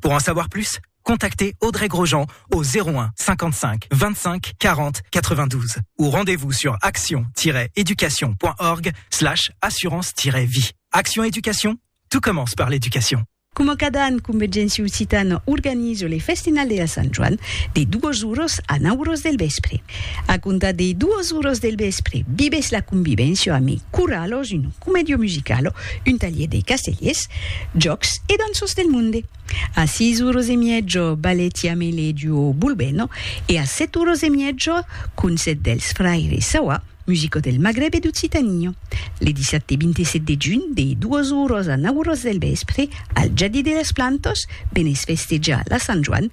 Pour en savoir plus, contactez Audrey Grosjean au 01 55 25 40 92 ou rendez-vous sur action-education.org slash assurance-vie. Action Education, tout commence par l'éducation. Coma cada an, Convergéncia Occitana organiza le Festinal de la Sant Joan de 2 oras a 9 oras del vèspre. A comptar de 2 oras del vèspre, vivètz la convivéncia amé Curalo, un comèdio musicalo Un talhier de castellers, jòcs e danços del monde. A sis uros e mièjo, Baletiamele duo Bulbeno e a set uros e mièjo, concèrt dels fraires Sawa, musico del Magreb e d'Occitania. Le dissabte 27 de junh, de duos uros a nau uros del vèspre, al Jardí de las Plantas, venètz festejar la Sant Joan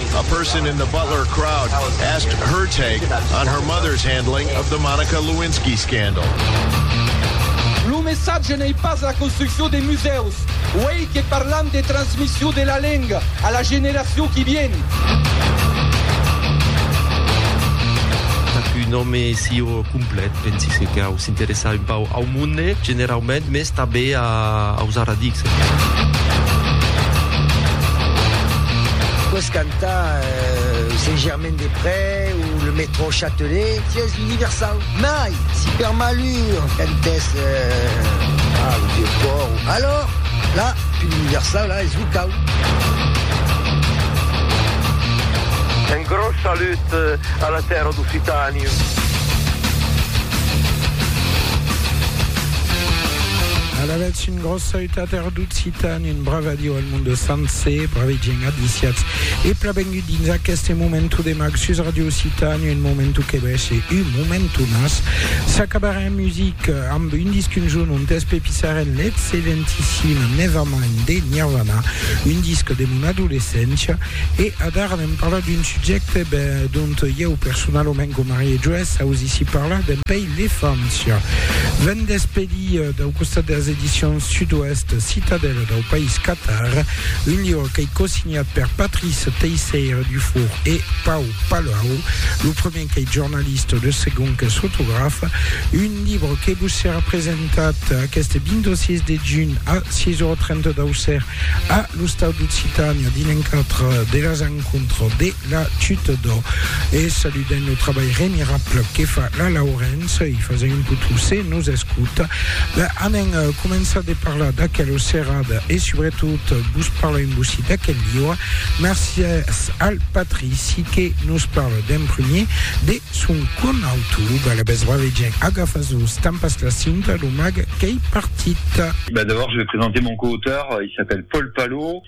A person in the Butler crowd asked her take on her mother's handling of the Monica Lewinsky scandal. Lo messatge n'ei pas la construccion de musèus, uèi que parlam de transmission de la lenga a la generacion qui vien. Qu'un òme sieu complet, pensi que cau s'interessar un pauc au monde generaument, mes. Tà be a ausar a dic, senhor. Pòs cantar Saint-Germain-des-Près o le Métro Châtelet, si es universau. Mai, si per malur cantès al Vieux-Port, alòr, là, tu l'universau, là, es locau. Un gròs salut a la tèrra d'Occitània. Alavetz un gròs sautat er d'Occitan, un brave adiu al monde sencer, brave gent adiciatz e pla bengut dins aqueste momentu de mag sus Radio Occitan, un momentu que bèshe un momentu mas s'acabarà en music amb un disc un jorn ont espepissarem l'excellentissim Nevermind de Nirvana, un disc de mon adolescéncia e adara anem parlar d'un subjècte ben, dont ieu personalament com Marie-Joësse ausissi parlar dempeis L'Efància. Vent d'Espedir, dau costat de las Edicions Sud-Oèst, Citadèla dau País Catar, un liure qu'ei cosignat per Patrice Teisseire Dufour e Pau Palau, lo premier qu'ei jornalista, lo segond qu'es fotograf, un libre que vos serà presentat aqueste 26 de junh a 6 ora 30 d'Auxerre a l'Ostau d'Occitània dins l'encadre de las Encontres de La chute d'or. E saludent lo trabalh remirable que fa la Laurence, i fasa un potou se nos escouta. Ben, anem començar de parlar d'aquela serada e subretot vos parlar un bocí d'aquel lieu. Mercies al Patrici que nos parla d'en premier de son conauto. Ben, la bèstra vegen agafas-vos tan pas la cinta, lo mag qu'ei partit. Ben, d'abord je vais présenter mon co-auteur, il s'appelle Paul Palot.